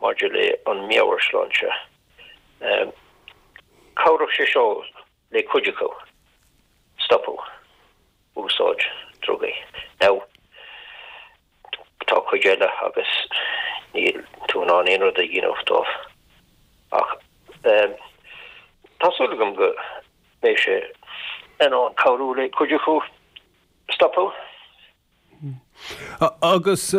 maidir le an meabhairshláinte. Cabhródh sé seo le cuid acu stopadh úsáid drugaí. Now, tá cuid eile agus níl tú in ann aon rud a dhéanamh dóibh. Ach tá súil agam go mbeidh sé in ann cabhrú le cuid acu stopadh. Agus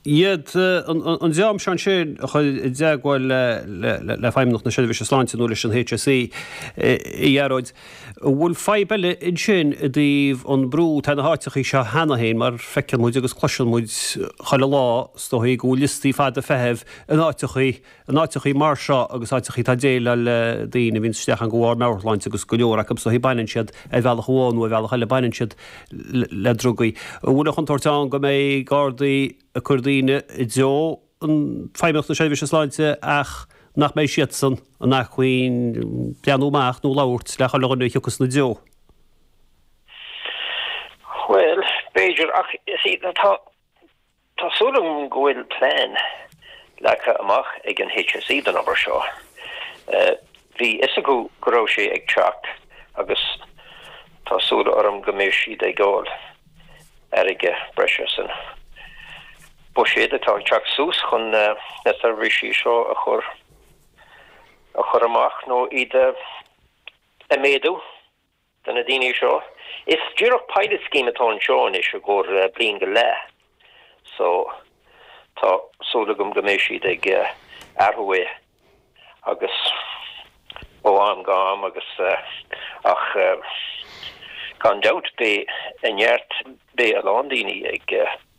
iad, an dream seo ansin, a chur i dteagmháil le Feidhmeannacht na Seirbhíse Sláinte nó leis an HSE, a Ghearóid, an bhfuil fadhb eile ansin i dtaobh an brú atá ar na háiteachaí seo cheana féin, mar feiceann muid agus cloiseann muid chuile lá, is dóichí, go bhfuil liostaí fada feithimh in áiteachaí In áiteachaí mar seo agus áiteachaí atá ag déileáil le daoine a bhíonn isteach ann de bharr meabhairshláinte agus go leor acu is dóichí baineann siad ar bhealach amháin nó ar bhealach eile, baineann siad le drugaí. An bhfuil an chontúirt ann go mbeidh Gardaí ag cur daoine i dtreo Feidhmeannacht na Seirbhíse Sláinte ach nach mbeidh siadsan in acmhainn breathnú amach nó labhairt le chuile dhuine a thiocfas ina dtreo? Bhuel, b'fhéidir Tá súil agam go bhfuil plean leagtha amach ag an HSE don obair seo. Bhí fhios acu go raibh sé ag teacht agus tá súil orm go mbeidh siad ag fháil airgead breise san buiséad atá ag teacht suas chun na seirbhísí seo a chur a chur amach nó iad a méadú. do na daoine seo. Is díreach pilot scheme atá anseo anois i gcomhair bliain go leath so tá súil agam go mbeidh siad ag athrú é agus ó am go ham agus ach gan dabht beidh a neart, beidh a lán daoine ag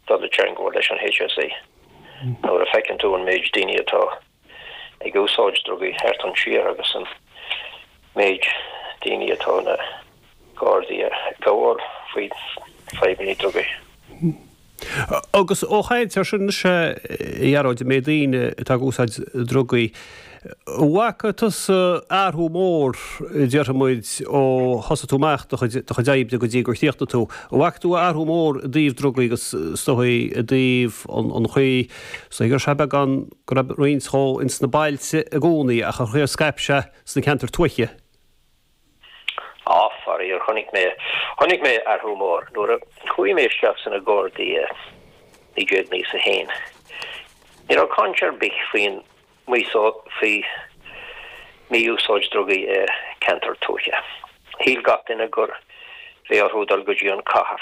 dul i dteangmháil leis an HSE nuair a feiceann tú an méid daoine atá. ag úsáid drugaí thart ansin agus an méid daoine atá na Gardaí ag gabháil faoi fadhbannaí drugaí. Agus ag caint ar sin is ea, a Ghearóid, an méid daoine atá ag úsáid drugaí. An bhfaca tusa athrú mór, déarfaidh muid, ó thosaigh tú amach do chuid, do chuid oibre go dtí gur chríochnaigh tú? An bhfaca tú athrú mór i dtaobh drugaí agus is dóichí i dtaobh an chaoi, is dóigh, gur sea beagán, go raibh roinnt dhó insna bailte i gcónaí ach ar scaip sé sna ceantair tuaithe. Á, faraor, chonaic mé, chonaic mé athrú mór nuair a chuaigh mé isteach sna Gardaí i naoi déag naocha a haon. Ní raibh caint ar bith faoin, faoi mí-úsáid drugaí i ceantair tuaithe. Shíl gach duine gurbh éigean dóibh dul go dtí an cathair.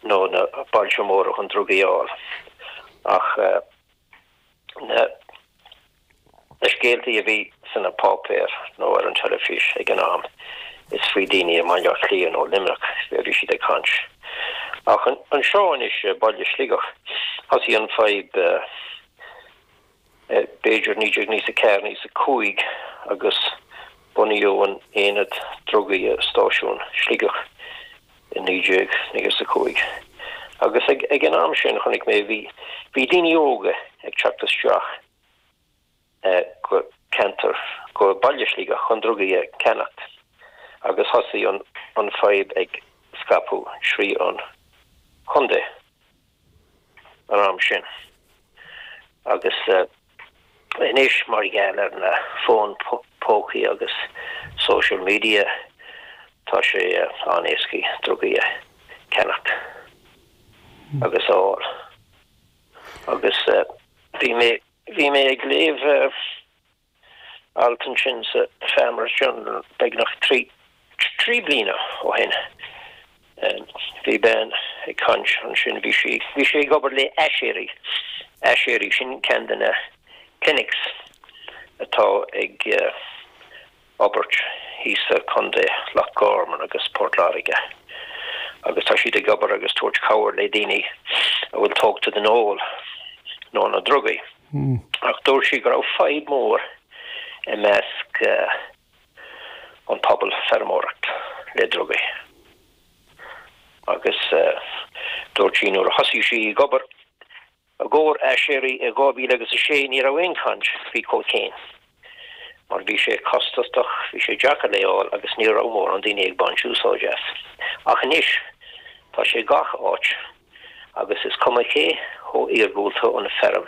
nó na bailte móra chun drugaí a fháil. Ach na scéaltaí a bhí sna páipéir nó ar an teilifís ag an am, is faoi daoine i mBaile Átha Cliath nó Luimneach a bhí siad ag caint. Ach anseo anois i baile Sligeach, thosaigh an fadhb. b'fhéidir, 19 nócha 4 nócha 5 agus bunaíodh an aonad drugaí i stáisiún Shligeach i 19 nócha 5 agus ag an am sin, chonaic mé, bhí daoine óga ag teacht isteach go ceantar, go baile Shligeach chun drugaí a cheannacht agus thosaigh an fadhb ag scaipeadh thrí an chontae. an am sin. Agus anois, mar gheall ar na fóin pócaí agus social media, tá sé an-éasca drugaí a ceannacht agus a fháil. Agus bhí mé, bhí mé ag léamh. alt ansin sa Farmers Journal beagnach trí bliana ó shin. Bhí bean ag caint ansin, bhí sí, bhí sí ag obair le Aiséirí, Aiséirí, sin ceann de na clinics atá ag obair thíos sa Chontae, Loch Gorman agus Port Láirge, agus tá siad ag obair agus tabhairt cabhair le daoine a bhfuil tógtha den ól nó na drugaí. Ach dúirt sí go raibh fadhb mór i measc an pobal feirmeoireacht le drugaí. Agus dúirt sí nuair a thosaigh sí ag obair i gcomhair Aiséirí i 2000 agus a 6 ní raibh aon chaint faoi cocaine mar bhí sé costasach, bhí sé deacair é a fháil agus ní raibh mórán daoine ag baint úsáid as. Ach anois tá sé gach áit agus is cuma cé chomh iargúlta an feirm